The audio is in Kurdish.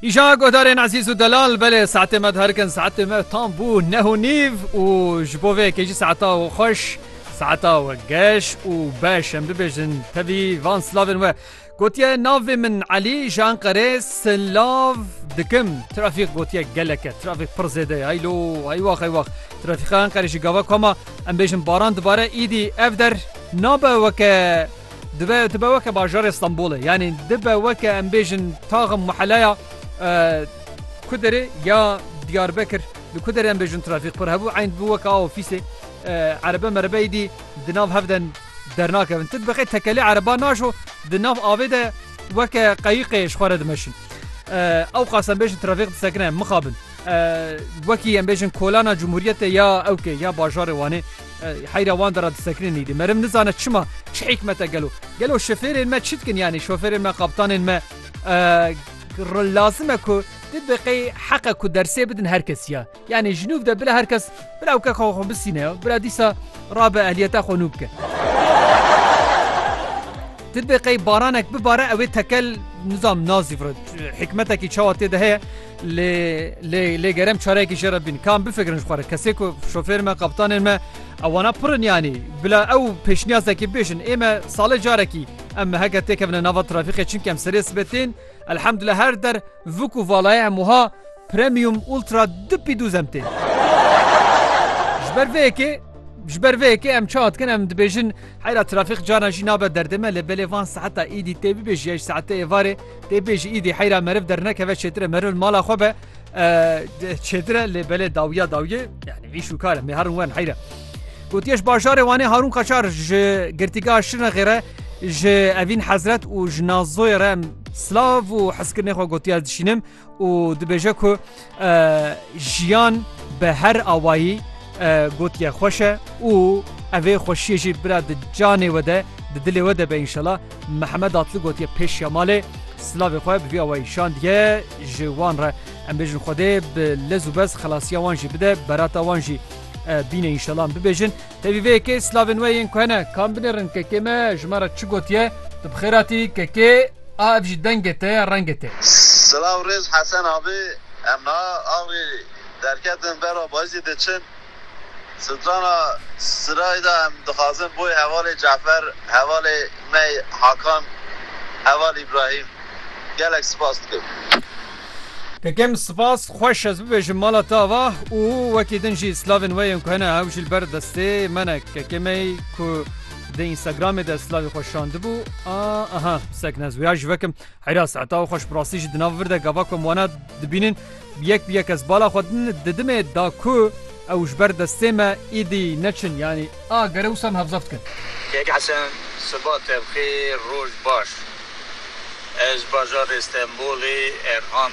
Îşa guhdarên ezîz û delal belê saetê me diherikin saetê me tam bû neh û nîv û ji bo vê kêjî saeta û xweş saeta we geş û beş em bibêjin tevî van silavên we gotiye navê min Elî ji Enqerê silav dikim trafîk gotiye geleke trafîk pir zêde heylo heywax heywax trafîka Enqerê jî gava koma em bêjin baran dibare îdî ev der nabe weke Dibe dibe weke bajarê Stenbolê yanî dibe weke em bêjin taxim muheleya Kuderê ya Diyarbekir li Kuderê em bêjin trafîk pir hebû eyn dibû weke a ofîsê erebe merebe êdî di nav hev de dernakevin. Ti dibeqê tekelê ereba najo di nav avê de weke qeyîqê ji xwe re dimeşin. Ew qas em bêjin trafîk disekine mixabin. Wekî em bêjin kolana Cumhuriyetê ya ewkê ya bajarê Wanê Heyra wan de re disekinin îdî. Merim nizane çima, çi hîkmete gelo. Gelo şofêrên me çi dikin yanî şofêrên me kaptanên me lazim e ku di deqeyê heqe ku dersê bidin her kes ya. Yanî ji nûv de bila her kes bila ewke xwe xwe bisîne ya. Bila dîsa rabe ehliyeta xwe nû bike. Di deqeyê baranek bibare ew ê tekel nizam nazî hikmetekî çawa tê de heye. Lê lê lê gerem çarekî jê re bîn. Kam bifikirin ji xwe re kesê ku şofêrên me kaptanên me ewana pir in yanî bila ew pêşniyazekî bêjin ê me salê carekî em meheke têkevine nava trafîqê çimkî em serê sibê tên elhemdulillah her der vik û valayê em wiha premium ultra du pî dûz em tên. Ji ber vê yekê ji ber vê yekê em çawa dikin em dibêjin heyra trafîq carna jî nabe derdê me lê belê van seheta îdî tê bibêjî ya ji saetê êvarê Tê pê ji îdî heyra meriv dernekeve çêtire meriv li mala xwe be çêtire lê belê dawiya dawiye yani vî şûkare mê herûn wen heyre. Gotiye ji bajarê Wanê Harûn Qaçar ji girtîgeha Şirnexê re ji Evîn Hezret û ji Nazoyê re silav û hezkirinê xwe gotiya dişînim. û dibêje ku jiyan bi her awayî gotiye xweş e û evê xweşiyê jî bira di canê we de di dilê we de be înşela Mihemed Atli gotiye pêşiya malê silavê xwe bi vî awayî şandiye ji wan re em bêjin Xwedê bi lez û bez xelasiya wan jî bide berata wan jî bîne înşela bibêjin Tevî vê yekê slavên we yên ku hene kam binêrin kekê me ji me re çi gotiye? Tu bi xêr hatî kekê a ev jî dengê te ye rengê te. Silav rêz Hesen abi em niha axirî derketin bera Bayizî diçin strana Sirayê de em dixwazin boy hevalê Cafer hevalê me Hakan heval Îbrahîm gelek spas dikim. Kekem spas xweş ez bibêjim mala te ava û wekî din jî slavên we yên ku hene ew jî li ber destê me ne kekemey ku di Instagramê de slavê xwe şandibû a aha sekne ez wêya jî vekim heyra saeta û xweş bi rastî jî di nav vir de gava ku em wana dibînin bi yek bi yek ez bala xwe didimê da ku Ew ji ber destê me îdî neçin yanî. A gere wisa em hevza bikin. Kek Hesen siba te bi xêr roj baş ez bajarê stenbolê erhan.